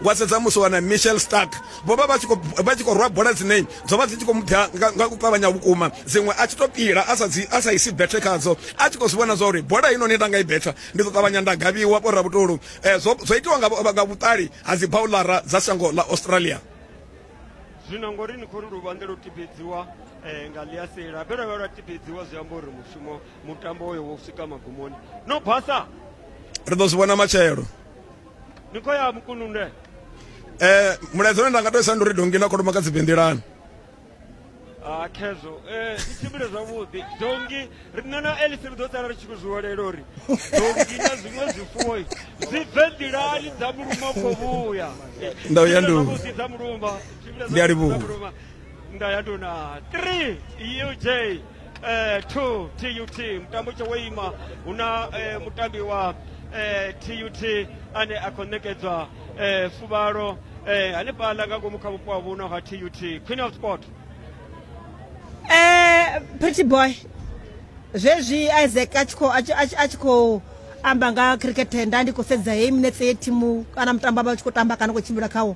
wa sedza musi wana michel stark vho vha vha tshi khou rwa bola dzine dzo vha dzi tshi khou mubya nga u ṱavhanya vhukuma dziṅwe a tshi tou pila a sa isi bethe khadzo a tshi khou zwi vhona zwa uri bola ino ni nda nga i betha ndi ḓo ṱavhanya nda gavhiwa vho rabutulu eh, zwo itiwa nga vhuṱali ha dzi baulara dza shango ḽa australia zwino ngori ni khou ri luvhanḓe lwo tibedziwa um eh, nga ḽiasela vhe lwa vha lwa tibedziwa zwi amba uri mushumo mutambo oyo wo swika magumoni no basa ri ḓo zwi vhona matshelo ni khou ya mukununde eh mulaedza une nda nga tou isa ndi uri dongi na kholomo kha dzi bendelani a ah, khezwo um eh, i tshimbile zwavhuḓi dongi riṋe na elise ri ḓo tsala ri tshi khou zwi hulela uri dongi na zwiṅwe zwifuwo zwi bve nḓilani dza muluma khou vhuya nda uya ndu dza muluma ndi a livhuwa nda ya nduna 3 uj eh, to tut mutambo tsho wo ima hu na eh, mutambi wa eh, tut ane a khou ṋekedzwa eh, fuvhalo eh, hanefhaḽa nga ngomu kha vhupo ha vhuno ha tut queen of sport Eh, pretty boy zwezwi isaac a tshi khou- a tshi- a tshi- a tshi khou amba nga cricket nda ndi khou sedza heyi minetse ye thimu kana mutambo vha tshi khou tamba kana khou tshimbila khawo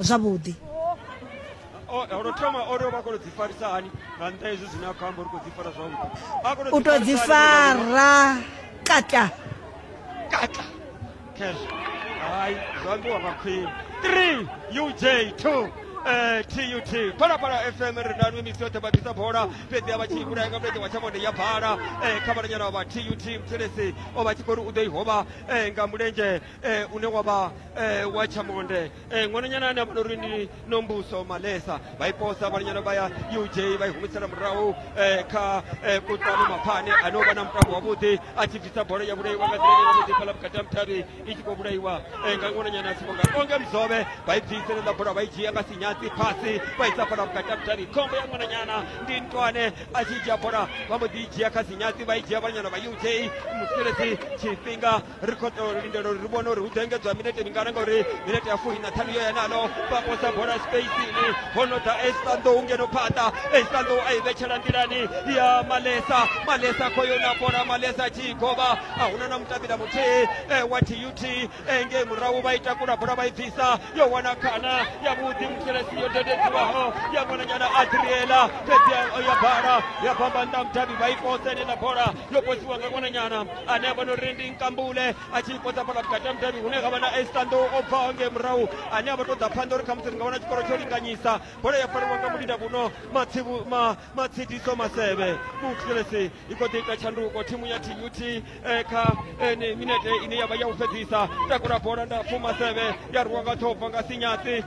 zwavhuḓi. U tou dzi fara kata kata khezwo hai zwo ambiwa nga khwini 3 uj 2 tut eh, phalaphala fm ri na nwe misi yoṱhe vha ḓisa bola fhedzi a vha tshi vhulaya nga mulenzhe wa tshamonde ya bala eh, kha vhalanyana vha tut muthelesi o vha tshi khou ri u ḓo i hovha eh, nga mulenzhe eh, une wa vha eh, wa chamonde eh, ṅwananyana ane a vha uri ndi nombuso malesa vha iposa vhananyana vha ya uj vha i humisela murahu eh, kha eh, kutlwano maphane ane o vha na mutambo wavhuḓi a tshi bvisa bola ya vhulaiwa nga nḓila yavhuḓi fhala vhukati ha muthavhi i tshi khou vhulaiwa eh, nga ṅwananyana a sivonga onge mzove vha i bvisele ḽa bola vha i dzhia nga sinyatsi phasi vha isa fhala vhukati ha muthavhi khombo ya ṅwananyana ndi ntwane a tshi dzhia bola vha mbo ḓi i dzhia kha sinyatsi vha i dzhia vhananyana vha uj musiredzi tshifhinga ri khou tea u lindela uri ri vhone uri hu ḓo engedzwa minete mingana ngauri minete ya fuli na ṱhanu yo ya nalo vha posa bola spacini ho no ḓa estanḓou ngeno phaṱa estanḓou a i vhetshela nḓilani ya malesa malesa khou yo na bola malesa tshi i govha a huna na mutambila muthihi e, wa tut engei murahu vha i takula bola vha i bvisa yo wana khana ya vhuḓi muselesi yo dededziwaho ya ṅwananyana adriela fhedzi ya bala ya bamba nnḓa mudavhi vha i posa enela bola yo posiwa nga ṅwananyana ane avha nori ndi nkambule a tshi ipodza fhala vhukati ha mudavhi hune ha vha na estando o bvaho nge murahu ane avha to ḓa phanḓa uri khamusi ri nga wana tshikoro tsho linganyisa bola ya fariwa nga mulinda vhuno matsidiso maseve muthilesi i kho ḓi ita tshanduko thimu ya tut eh, kha eh, minete ine yavha ya u fhedzisa takula bola ndapfu maseve ya rwiwa nga thobva nga sinyatsi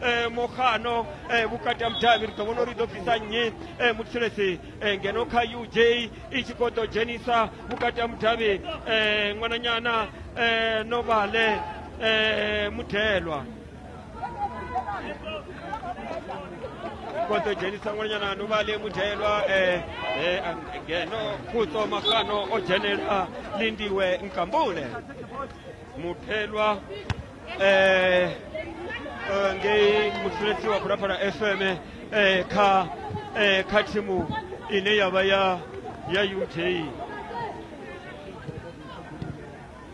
e, mohano e, vhukati ha mudavhi ri ḓo vhona uri ḓo bvisa nnyi e, mutshilesi e, ngeno kha uj i tshi khou ḓo dzhenisa vhukati ha mudavhi e, ṅwananyana e, novale e, mudelwa khou ḓo dzhenisa ṅwananyana novale mudelwa e, e, ngeno khuto mahano o dzhenela lindiwe nkambule mudelwa ngei musuletsi wa phalaphala fm eh, kha eh, kha thimu ine ya vha ya ya ut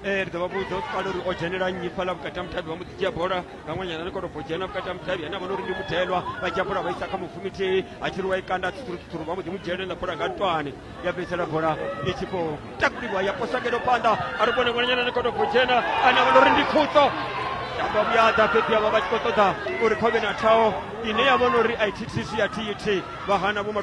eh, ri ḓo vha vhudza u kale uri o dzhenela nnyi fhaḽa vhukati ha muthavhi vha mu dzhia bola nga ṅwanyana ri kono bvo dzhena vhukati ha muthavhi ane a vhona uri ndi muthelwa vha dzhia bola vha isa kha mufumitihi a tshi ri wa i kanda tsutsurutsuturu vha mbo ḓi mu dzhenelela bola nga ntwani ya bvisela bola i tshi khou takuliwa ya posa ngeno phanḓa a ri vhone ngwenenyana ni kono dzhena a na vhona uri ndi khutso tamba vhuyaḓa fhedzi avha vha tshi khou ṱoḓa uri khovhe na thaho ine ya vhona uri a i thithisi ya thi thi vha hana vho